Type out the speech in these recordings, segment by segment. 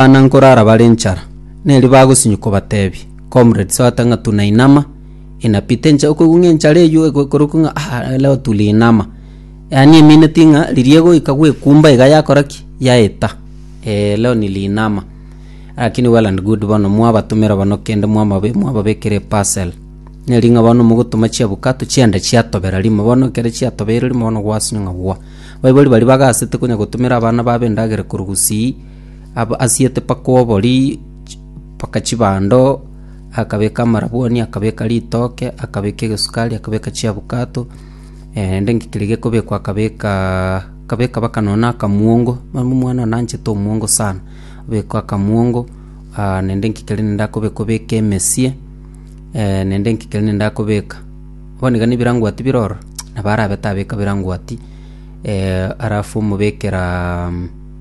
Abana nkorara bare enchara, neri bagosinyi kobatebi, Comrades ogata ng'a tunainama, inapita enchara, okoigwa ng'a enchara eywo ego ekorokwa ng'a ah leo tuliinama. Yaani emineti ng'a riria egoika gwekumba iga yakora ki? Yaeta. Eeh leo niliinama. Lakini well and good bono mwabatomera bono kende mwamabe mwababekera eparcel, neri ng'a bono mogotoma chiabukato chianda chiatobera rimo, bono ekero chiatobeire rimo bono gwasinywa ng'a gwa. Baibori baria bagasete konya gotomera abana babo endagera korwa gusii. Abwo asiete baka obori baka chibando, akabeka amarabwoni, akabeka ritoke, akabeka egesukari, akabeka chiabukato, naende inki keria gekobekwa akabeka akabeka baka nonye na akamuongo, mani omwana one anchete omuongo sana, abeka akamuongo naende inki keria naende akobeka obeke emesie naende inki keria naende akobeka. Bono iga nebirangoti bire ororo, nabo arabe tabeka birangoti alafu omobekera.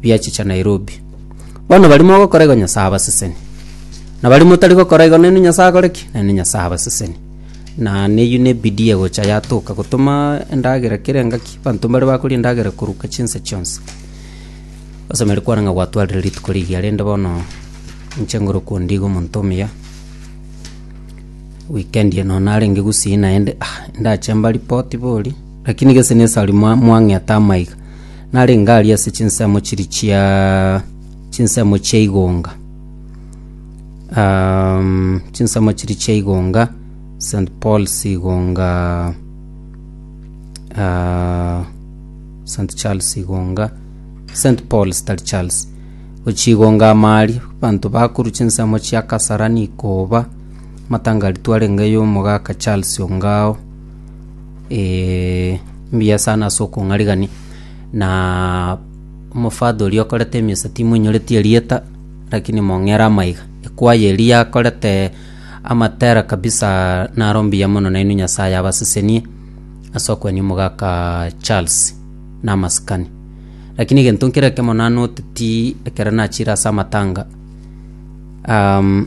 bia chicha Nairobi. Bono baria mogokora igo Nyasae abaseseni, na baria motari gokora igo nainwe Nyasae akore ki? Nainwe Nyasae abaseseni. Na neyio na ebidii egocha yatoka gotoma endagera kera engaki, banto mbare bakoria endagera koruka chinsa chionsi. Osemeri kwane ng'a gwatwarire rituko rigiya rende bono inche ngore okonde iga omonto omuya, weekend eye nonya narenge gusii naende ah, ndache mbaripoti boria, lakini gese nesari mwa- mwang'eta ama iga. narenge aria ase chinsemo chiria chia chinsemo chia igonga um, chinsemo chiria chia igonga st paul's igonga uh, st charles igonga st paul's tari charles gochigonga amaaria banto bakoru chinsemo chia kasarani koba matangari twarenge yomogaka charles ongao Ee, mbuya sana ase okong'arigani. Na omofather oria okorete emesa timoinyoreti erieta, lakini mong'ere amaiga. Ekwaya eria yakorete amatera kabisa naro mbuya mono nainwe Nyasaye abasesenie ase okwania omogaka Charles na amasikani. Lakini egento nkere ekemo nanoteti ekero nachire ase amatanga, um,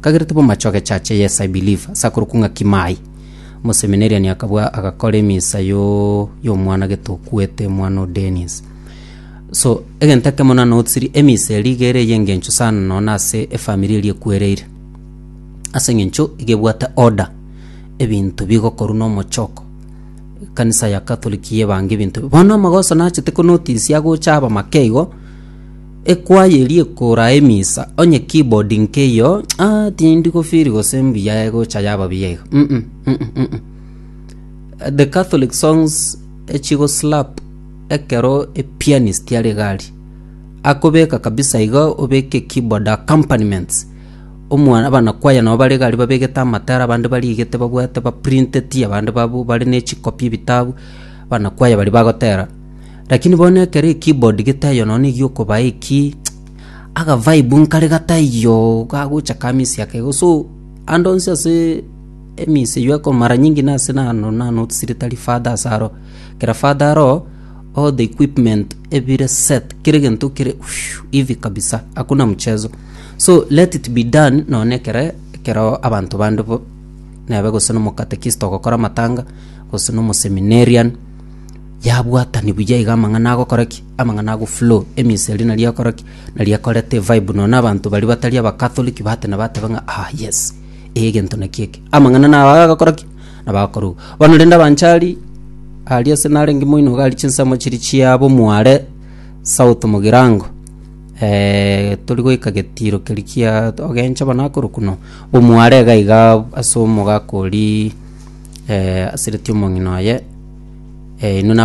Kagere tibomache ogechacha yes I believe ase akorokwa ng'a Kimai. Omoseminarian akabua agakora emisa yo y'omwana gete okwete omwana o Dennis. So egento ekemo na notsiri emisa eria iga ere ey'engencho sana nonya na ase efamiri eria ekwereire. Ase eng'encho iga ebwate order ebinto bigokorwa na omochoko. Ekanisa ya Catholic yebanga ebinto. Bono amagoso nachete ko notice agocha abamake igo. Ekwaya eria ekoraa emisa, onye keyboard nk'eyio, ah, tindi gofeel gose mbuya egocha yaba buya iga. Mm, mm, mm, mm, mm, mm. The Catholic songs echigo slap ekero epianist are gari. Akobeka kabisa iga obeke keyboard accompaniments. Omwana abana kwaya nabo bare gari babegete amatara abande barigete babwate ba printed abande babu bare ne chikopi ebitabu abana kwaya bari bagotera. Lakini bono ekero ekibodi getaiyo nonya negi'okobaa eki, agavibe nkare gataiyo gagocha ka misia kegoso. So ande onsi ase emisi eyio eko mara nyingi nase nano na notisire tari father ase aro. Kera father aro, all the equipment ebire set, kera egento kere ushuu hivi kabisa, hakuna mchezo. So let it be done nonya na ekere ekero abanto bande bo nebe gose na omokatekista ogokora amatanga, gose na omoseminarian. yabwatani buya iga amang'ana agokora ki? Amang'ana ago flow, eminsa eria nari egokora ki? Nari ekoreta evibe nonya na abanto baria batari aba Catholic batenena bateba ng'a ah yes, eh egento naki eke. Amang'ana nabo iga agokora ki? Nabo akorwa. Bono rende abanchari, aria ase narenge moino iga aria chinsemo chiria chiabo Mwale, South Mugirango. Tori goika getiiro keria kia ogenche bono akorokwa no omware iga iga ase omogaka oria asiretie omong'ina oye, inwe na.